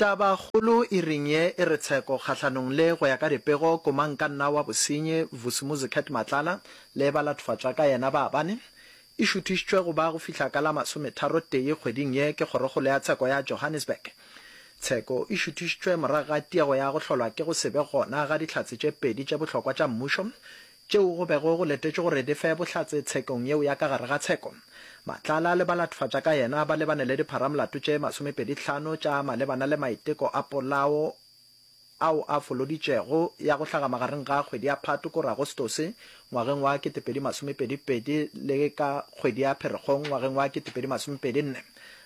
Tabakgolo e reng ye e re tsheko kgahlanong le go ya ka dipego komankanna wa bosenyi Vusimuzi Cat Matlala le ba latofatšwa ka yena ba bane, e šuthišitšwe go ba go fihla ka la masometharo tee kgweding ye ke kgorokgolo ya tsheko ya Johannesburg. Tsheko e šuthišitšwe morago ga tiego ya go hlolwa ke go se be gona ga dihlatse tše pedi tše bohlokwa tša mmušo tšeo go bego go letetšwe gore di fe bohlatse tshekong yeo ya ka gare ga tsheko. Matlala le balatofadja ka yena ba lebane le dipharamolato tše masomepedi tlhano tša malebana le maiteko a polao ao a foloditšwego ya go hlaga magareng ga kgwedi ya Phato kore Agostose ngwageng wa ketepedi masomepedi pedi le ka kgwedi ya Pherekgong ngwageng wa ketepedi masomepedi nne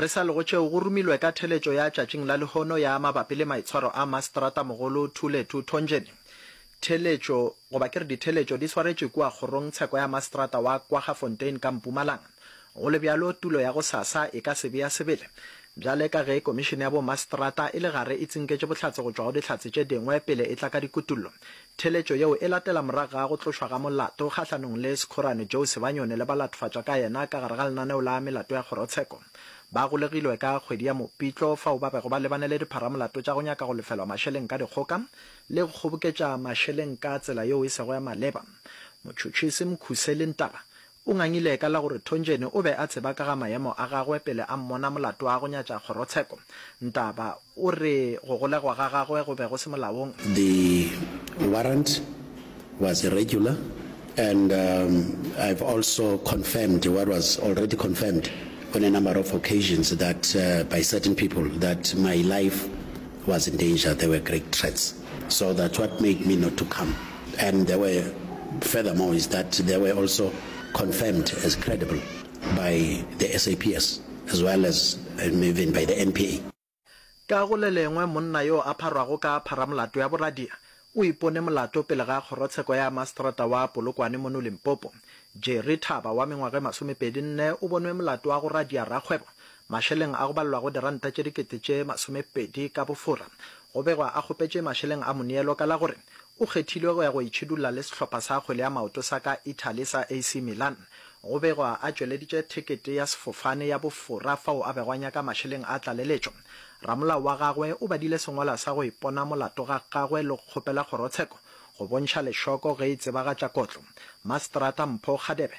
Re sa lego tšeo, go rumilwe ka theletšo ya tšatšing la lehono ya mabapi le maitshwaro a Mastrata-mogolo Thulethu Thonjeni. Theletšo, goba ke re ditheletšo, di swaretšwe kua kgorong tsheko ya Mastrata wa Kwaggafontein ka Mpumalang. Go le bjalo, tulo ya gosasa e ka se be ya sebele. Bjale ka ge Komišene ya bo Mastrata e le gare e tsinketše bohlatse go tšwa go dihlatse tše dingwe pele e tla ka dikutullo, Theletšo yeo e latela morago ga go tlošwa ga molato kgahlanong le Sekgorane Joe Sebanyone le ba latofatšwa ka yena ka gare ga lenaneo la melato ya kgorotsheko. Ba golegilwe ka kgwedi ya Mopitlo fao ba bego ba lebane le dipharamolato tša go nyaka go lefelwa mašeleng ka dikgoka le go kgoboketša mašeleng ka tsela yeo e sego ya maleba. Motšhotšhisi Mkhuseli Ntaba O ngangile ka la gore Thonjeni o be a tseba ka ga mayemo a gagwe pele a mmona molato a go nyatša kgorotsheko. Ntaba o re go golegwa ga gagwe go be go se molaong. The warrant was irregular and I've also confirmed what was already confirmed on a number of occasions that by certain people that my life was in danger, there were great threats. So that's what made me not to come and there were furthermore is that there were also confirmed as credible by the SAPS as well as um, even by the NPA. Ka go le lengwe, monna yo a pharwago ka pharamolato ya boradia o ipone molato pele ga Kgorotsheko ya Maseterata wa Polokwane mono Limpopo. Jerry Thaba wa mengwaga e masomepedi nne o bonwe molato wa go radia rakgwebo mašeleng a go balelwago diranta tše dikete tše masomepedi ka bofora Go begwa a kgopetše mašeleng a moneelo ka la gore o kgethilwe go ya go itšhidulla le sehlopha sa kgwele ya maoto sa ka Italy sa AC Milan. Go begwa a tšweleditše thekete ya sefofane ya bofora fao a bego a nyaka mašeleng a tlaleletšo. Ramolao wa gagwe o badile sengwalwa sa go ipona molato ga gagwe le go kgopela kgorotsheko go bontšha lešoko ge e tsebagatša kotlo. Maseterata Mpho Kgadebe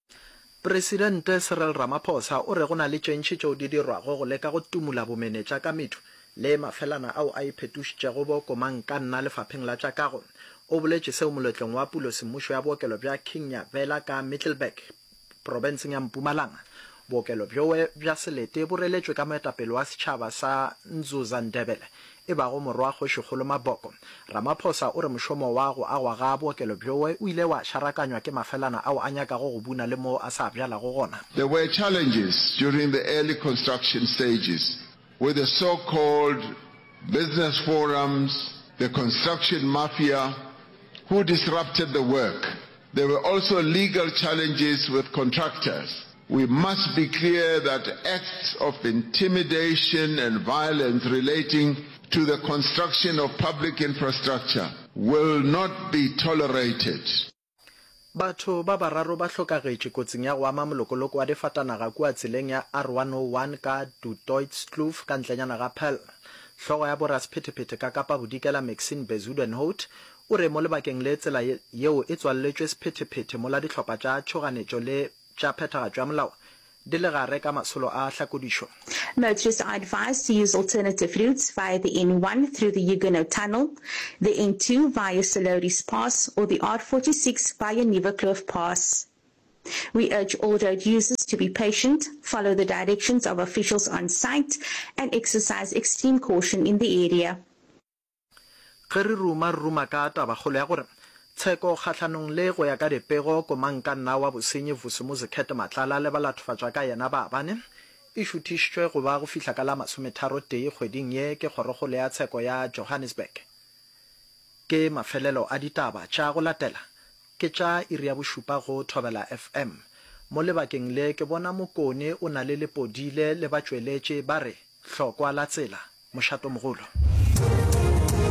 Presidente Cyril Ramaphosa o re go na le tšentši tšeo di dirwago go leka go tumula bomenetša ka methu le mafelana ao a iphetošitšego bo komankanna lefapheng la tša kago. O boletše seo moletlong wa pulo semmušo ya bookelo bja King Nyavela ka Middelburg, profenseng ya Mpumalanga. Bookelo bjoe bja selete bo reletšwe ka moetapele wa setšhaba sa Nzuza Ndebele e bago Morwa Kgošikgolo Maboko. Ramaphosa o re mošomo wa go agwa ga bookelo bjoe o ile wa šarakanywa ke mafelana ao a nyakago go buna le moo a sa bjalago gona. There were challenges during the early construction stages with the so called business forums, the construction mafia who disrupted the work There were also legal challenges with contractors. We must be clear that acts of intimidation and violence relating to the construction of public infrastructure will not be tolerated. Batho ba bararo ba hlokagetše kotsing ya go ama molokoloko wa difatanaga kua tseleng ya R101 ka Du Toitskloof ka ntlenyana ga Paarl. Hlogo ya bo rasphetephete ka Kapa Bodikela Maxine Bezuidenhout O re mo lebakeng le tsela yeo e tswalletšwe sephethephethe mola dihlopha tša tšhoganetšo le tša phethagatšo ya molao di le gare ka masolo a hlakodišo. Motorists are advised to use alternative routes via the N1 through the Huguenot Tunnel, the N2 via Soloris Pass or the R46 via Nieuwerkloof Pass. We urge all road users to be patient, follow the directions of officials on site and exercise extreme caution in the area. Ge re ruma, re ruma ka tabakgolo ya gore tsheko kgahlanong le, go ya ka dipego, komangkanna wa bosenyi Vusimuzi Cat Matlala le balathofatšwa ka yena ba bane, e šuthišitšwe go ba go fihla ka la masometharotee kgweding ye ke Kgorokgolo ya Tsheko ya Johannesburg. Ke mafelelo a ditaba tša go latela. Ke tša iri ya bošupa go Thobela FM. Mo lebakeng le ke bona Mokone o na le Lepodile le batšweletše ba re, Hlokwa la tsela, mošatomogolo.